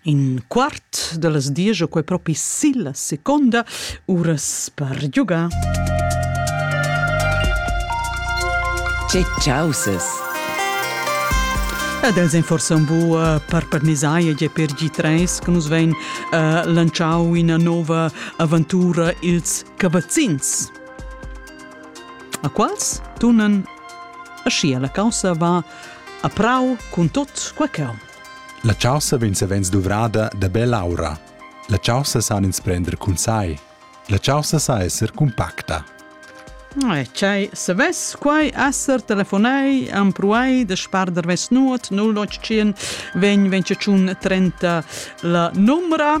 In quart da las diesch o quai propi silla seconda uras per giugar. Che chausas! Ed els ein forsa un bu uh, per parnisaia e per G3 che nus vein uh, lanciau ina nova aventura ils cavazzins. A quals tunan ascia la caussa va A prau cun tot quei cheu. La chaussa vegn savens duvrada da bell'aura. La chaussa san ins prender cun sai. La chaussa sa esser compacta. Tgei savess quai esser telefonei empruai da sparder ves nuot 081 20 30 la numera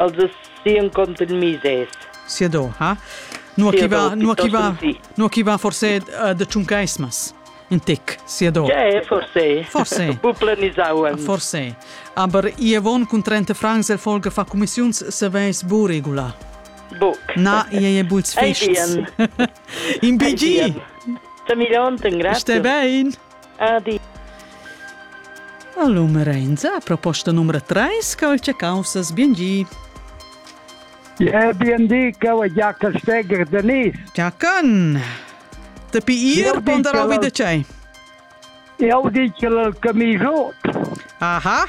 Els as sian contenmisés. Siadò, ha? Nua chi va, nua chi va, nua chi va forse uh, de tschuncaismas? In tic, siadò. Ja, forse. Forse. Bu planisauen. Forse. Aber ihr von cun 30 francs el folge fa commissiuns se veis bu regula. Buc. Na, ie e buts fists. In BG. Tamilonten, grazie. Ste bein. Adi. La Lum Renza ha proposta numero 3 calce caussas biengi. Ja, BND cau Giaca Steger Denis. Giacan. Te pi ir ponderau vi de cei? Eu dic el camisot. Aha.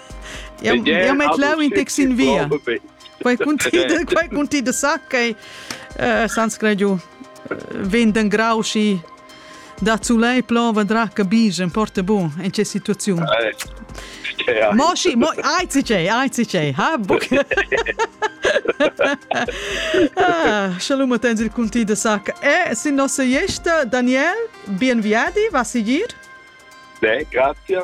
Eu, eu met lau in tec sin via. Quai cunti, quai cunti de sa che uh, sans gradiu venden grau și da zulei plon vendrà che bigen porta bun in che situaziun. Mo si, mo ai ci c'è, ai ci c'è, ha buc. Ah, shalom tens il cunti de sa che e sin nossa iesta Daniel, bien viadi, va sigir? Ne, grazie.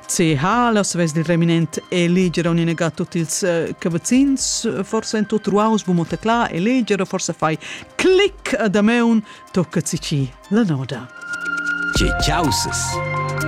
Tge ha la svess dil reminent eleger on ina tut ils eh, cavazzins forse en tut ruaus bu motecla eleger forse fai click da meun tocca ci la noda. Ce causes.